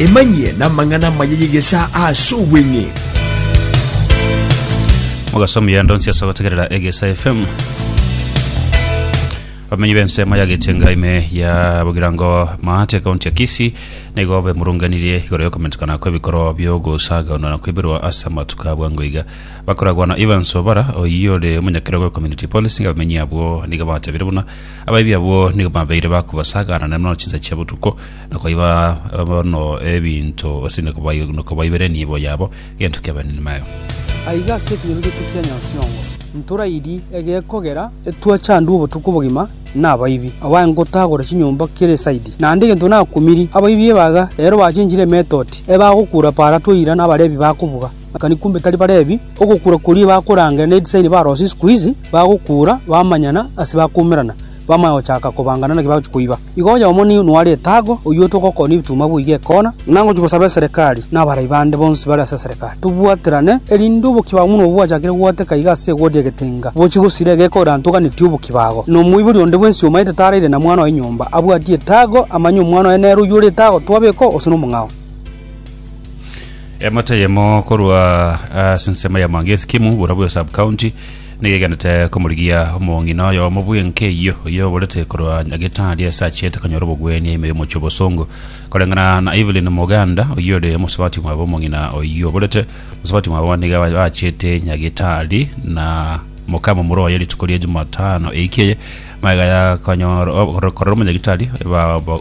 Emanyie namang'ana amaya y'egesaa ase obweng'e. Mogaso omuya ndonsi ase ogotegerera Egesa FM. Abamenyi b'ensemo ya Getenga ime ya Bogirango Maate kaunti ya Kisii nigo bemurunganirie igoro y'okomentekana kw'ebikorwa bi'ogosagaunana kw'eberwa ase amatuko a bwango iga. Bakoragwa na Evans Obara oyio ore omonyakerogo community policing abamenyi abwo nigo batabire buna Abaibi abwo nigo babeire bakobasaagana naende buna chinsa chia botuko, na koiba bono ebinto, gose na kobai- na kobaiberenia ebo yabo egento ki'abanini baye. Aiga ase ekegeregeto kia Nyasiongo. Ntorairi egekogera etwachandwe obotuko bogima nabaibi aba ngotagora chinyomba kere saidi. Naende egento nakumiri abaibi ebaga ero bachenchire emetoti ebagokura para toira nabarebi bakobuga. Kani kumbe tari Balevi? Ogokura koria bakorangeria ne edisaini barosie isiko izi, bagokura, bamanyana, ase bakoumerana, bamanya gochaka kobangana naki bagochia koiba. Igo oyomo nigo noare etago, oyio togokonia ebituma boiga ekona, na ngochia gosaba eserekari, na abarai bande bonsi bare ase eserekari. Tobwaterane, erinde obokibago buna obwo bwachakire goteka iga ase egoria egetenga, bochie gosira egeka ore antoganeti obokibago. Na omoibori onde bwensi omaete taraire na mwana oye nyomba, abwatie etago, amanye omwana oye nere oyio ore etago, twabeka oo, gose nomong'ao. Emate eyemo korwa ase ensemo ya Mwangi Esikimu borobwo ya sub-county nigo egenete komorigia omong'ina oyomo bw'enka eyio oyio oborete korwa Nyagetari ase achiete konyora obogwenia ime y'omochie obosongo. Koreng'ana na Evelyn Moganda oyio ore omosabati mwabo omong'ina oyio oborete omosabati mwabo nigo aba- achiete Nyagetari na mokama omorwa oye rituko ria Jumatano eiki eye magega ya konyora korora omonyagitari eba- ba-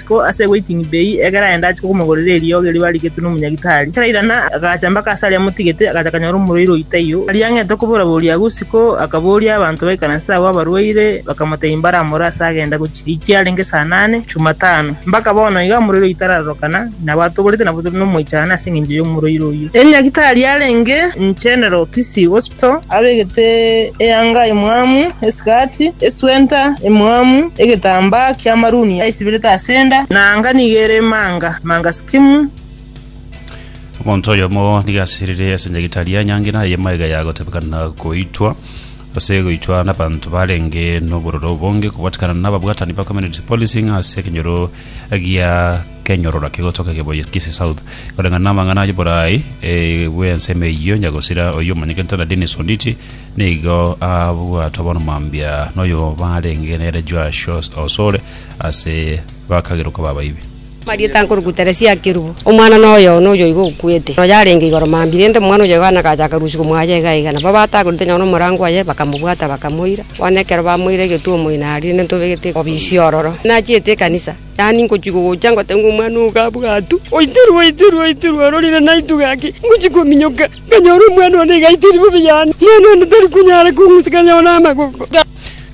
Ko ase waiting bay ekero aye ndache komogorera eriogi erio barigetwe nomonyagitari, ekero airana agacha mpaka ase aria amotigete, agacha akanyora omorwaire oyio taiyo. Aria ang'ete okobora boria agwo isiko, akaboria abanto baikaranse agwo abarwaire, bakamotebia mbaramore ase agenda gochia echi yarenge saa nane, Jumatano. Mpaka bono iga omorwaire oyio tararorokana, nabo atoborete nabo tore nomoichano ase engencho y'omorwaire oyio. Enyagitari yarenge General Kisii Hospital. Kristo, abegete eanga emwamu esigati, eswenta emwamu, egetambaa ki'amaruni aisibirete ase enda, na anga nigo ere emanga, emanga sikimu. Omonto oyomo nigo asiririe ase nyagitari ya nyangi, na eye magega ya gotebekana goitwa, gose goitwa n'abanto barenge n'obororo obonge, kobwatikana n'ababwatani ba Community Policing ase ekenyoro gia Kenyororo kegotoka keboyie Kisii South koreng'ana namang'ana ayio borai bwensemo eyio Nyagosira oyio omanyete Ntana Dennis Onditi nigo abwatwa bono mambia noyo barenge nere Joash Osore ase bakagerwa koba abaibi. Amarieta nkoruku Teresia Akerubo, omwana noyo one oyoigo okwete, noyo arenge igoro mambia rende omwana oyoigo aye nagachaaka rusia komoacha iga iga. Nabo batagorete nonye nomorango oye, bakamobwata bakamoira. Bono ekero bamoire egetuomo inari rende ntobegete obisia ororo. Nachiete ekanisa. Yaani ngochia gogocha ngote ng'a omwana oo gabwatu, oitirwe, oitirwe, oitirwe, ororire naintwe gaki, ngochia kominyoka, nkanyora omwana one iga aitiri bobe yane, omwana one tari konyara kong'usa kanyore amagoko.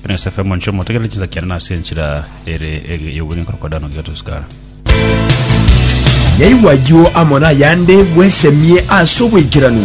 Buna Yosefu omonchie omotegerere chinsa kiane na ase enchera ere ege y'obogima korokodana ogiga tosikara. Yaigwa ayio amo nayande, bwesemie ase oboikeranu.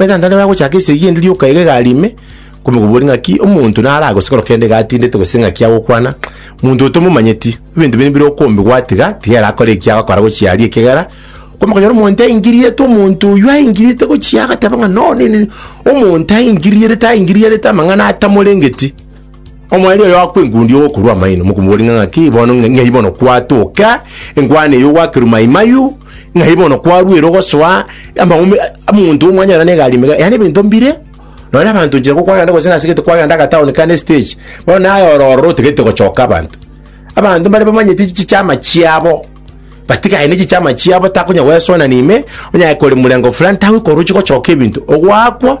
Omoisraeli naende agochaka esegi endi rioka iga egari ime, komokobori ng'aki omonto nare agosekora kende iga atindete gose ng'aki agokwana, monto oyo tomomanyeti, ebinto bire mbire okombe gwatiga, tiga ere akore eki agokora gochia aria ekegera, komokonyora omonto aingirierete omonto oyio aingirierete gochia agateba ng'a no nini, omonto aingirierete aingirierete amang'ana atamorengeti. Omoerio oyo akwa engundi ogokorwa amaino, mokomoboria ng'a ng'aki bono ng'a- ng'ai bono kwatoka enkwana eyo gwakerwa maimayu, ng'ai bono kwarwera ogosoa amaume omonto omwanyora na egari mega, yaani ebinto mbire nonya abanto nchera kwagenda gose nase gete kwagenda agataoni kare na estage, bono naye oro ororo otagete gochoka abanto. Abanto mbare bamanyete chichama chiabo, batigane ne chichama chiabo takonya goesoana na ime, onye aye kore morengo fulani tagokorochi gochoka ebinto, ogwakwa.